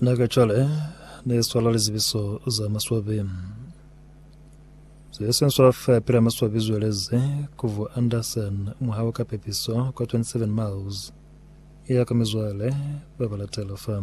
Na ka cwale ne swala lizibiso za maswabi ze se swala fa pela maswabi zweleze kuvu Anderson muhau ka pepiso kwa 27 miles ya ka mizwale ba ba latela fa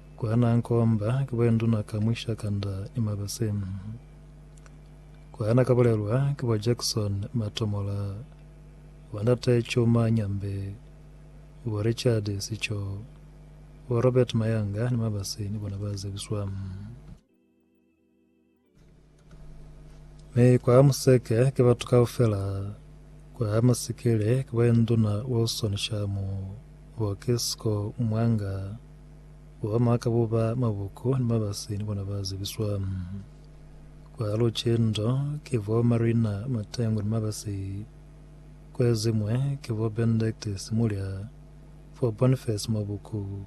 Ku hana nkomba ki bo nduna ka mwisha kanda ni mabasi. Ku hana ka bulelwa ki bo Jackson Matomola, bo ndate Chuma Nyambe, bo Richard Sicho, bo Robert Mayanga ni mabasi ni bona ba zebiswa. Mi kwa museke ki batu kaufela, kwa masikili ki ba Induna Wilson Shamu, bo Kisco Mwanga, bo ba Makabuba Mabuku ni Mabasi ni bona ba zibiswa. Kwa lucindo ki bo Marina Matengu ni Mabasi, kwezimwe ki bo Benedict Simulya, bo Boniface Mabuku,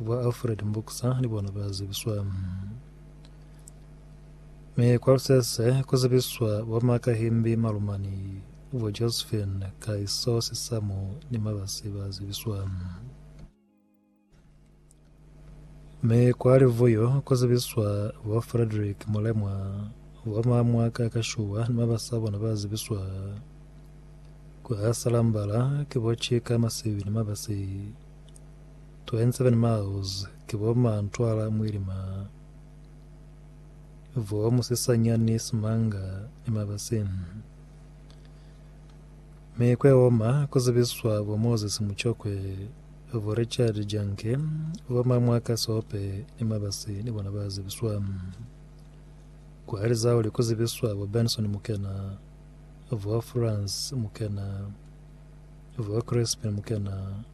bo Alfred Mbukisa ni bona ba zibiswa. Mi kwa lusese ku zibiswa bo Makahimbi Malumani, bo Josephine Kahiso Sisamu ni Mabasi ba zibiswa. Mi kwa Livuyo ku zibiswa bo Frederick Mulemwa, bo Mamwaka Kashuwa ni mabasi a bona ba zibiswa. Kwa Salambala ki bo Chika Masibi ni mabasi. 27 miles ki bo Mantwala Mwilima. Vuwa musisanyani simanga ni mabasi. Mi kwe oma ku zibiswa bo Moses Muchokwe, bo Richard Janke, bo Mamwaka Sope ni mabasi ni bona ba zibiswa. Ku Alizauli ku zibiswa bo Benson Mukena, bo Frans Mukena, bo Crispin Mukena,